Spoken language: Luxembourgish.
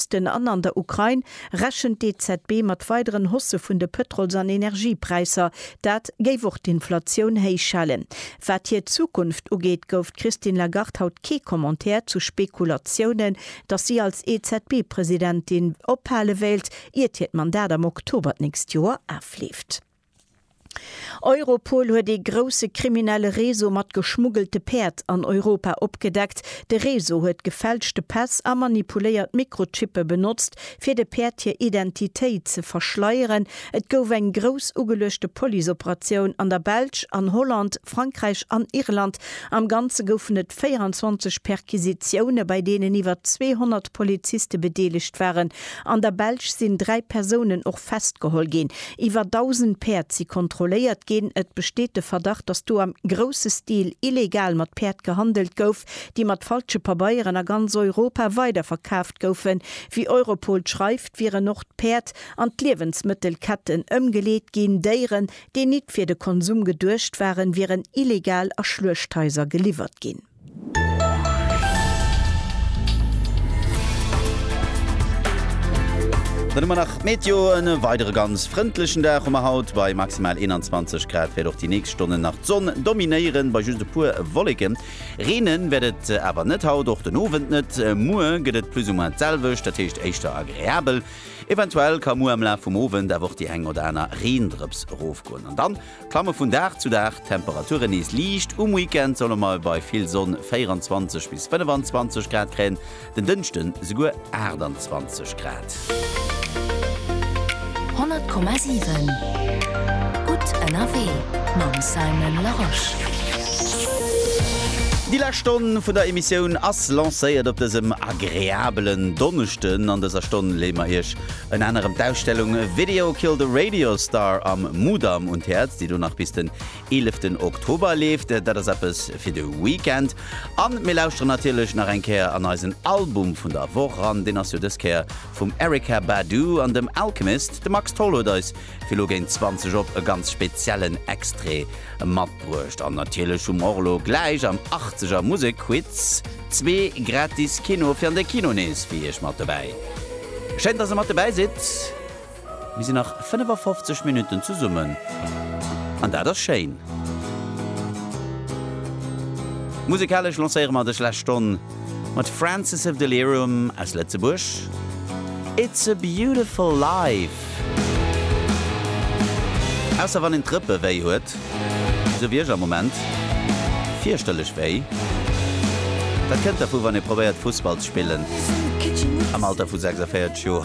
Osten an an der Ukrain, rechent d'EZB mat weideren Haussë vun de Pëtrols an Energiepräisser. Dat géif och d'Inflatioun héich halen. Wat hir Zukunft ugeet, gouf d'Christine Lagarde haut kee Commentaire zu Spekulatiounen, datt si als EZB-Presidentin ophale wéilt, iert hiert Mandat am Oktober d'nächst Joer afleeft. Europol huet ee grousse kriminelle Réseau mat geschmuggelte Päerd an Europa opgedeckt. De Réseau huet gefälschte Päss a manipuléiert Mikrochippe benotzt, fir de Päerd hir Identitéit ze verschleieren. Et gouf eng grouss ugeluechte Policeoperatioun an der Belsch, an Holland, Frankräich an Irland. Am Ganze goufen et 24 Perquisitioune, bei deenen iwwer 200 Poliziste bedeelegt waren. An der Belsch sinn dräi Persounen och. Schapp festgeholl ginn. Iwwer 1.000 Päerd si kontrolléiert ginn. Et besteet de Verdacht, datt do am grousse Stil illegal mat Päerd gehandelt gouf, déi mat falsche Pabeieren a ganz Europa weiderverkaaft goufen. Wéi Europol schreift, wieren och d'Päerd an d'Liewensmëttelketten ëmgeleet ginn. Déieren, déi nit fir de Konsum geduecht waren, wieren illegal a Schluechthaiser geliwwert ginn. Dann hu mer nach d'Meteo, en weidere ganz frëndlechen Dag hu mer haut, bei maximal 21 Grad wäert och déi nächst Stonnen nach d'Sonn dominéieren, bei just e puer Wolleken. Reenen wäert et awer net haut, och den Owend net. Muer gëtt et plus ou moins d'selwecht, dat heescht éischter agreabel. Eventuell ka muer am Laf vum Owend awer och déi eng oder aner Reendrëps erofgoen an dann, Klamme vun Dag zu Dag d'Temperature nees liicht, um Weekend solle mer bei vill Sonn 24 bis 25 Grad kréien, den Dënschde souguer 28 Grad. 100,7 Gutt ënnerwee mam Simon Larosche. Déi lescht Stonn vun der Emissioun ass lancéiert op dësem agreabelen Donneschden. An dëser Stonn leeë mer Iech Ënner anerem d'Ausstellung Video Killed a Radio Star am Mudam un d'Häerz, déi do nach bis den 11 ten Oktober leeft. Dat ass eppes fir de Weekend. An mir lauschteren natierlech nach eng Kéier an eisen Album vun der Woch ran. Deen ass jo dës Kéier vum Erykah Badu an dem Alchemist. De Max Tholl huet eis Fir lo géint 20 op e ganz speziellen Extrait matbruecht. An natierlech hu mer och lo gläich am 80 er Musekquiz zwee gratis Kino fir an de Kino nees fir iech mat dobäi. Schéin dass der mat dobäi sidd. Mir sinn nach 55 Minutten zesummen an dat ass schéin. Musekalesch lancéiere mer dës lescht Stonn. Mat Francis of Delirium aus Lëtzebuerg, It's a beautiful life. Ausser wann een d'Rëppe wéi huet, esou wéi ech am Moment, fierchterlech wéi. Dat kënnt dervu wann ee probéiert Fussball ze spillen am Alter vu 46 Joer.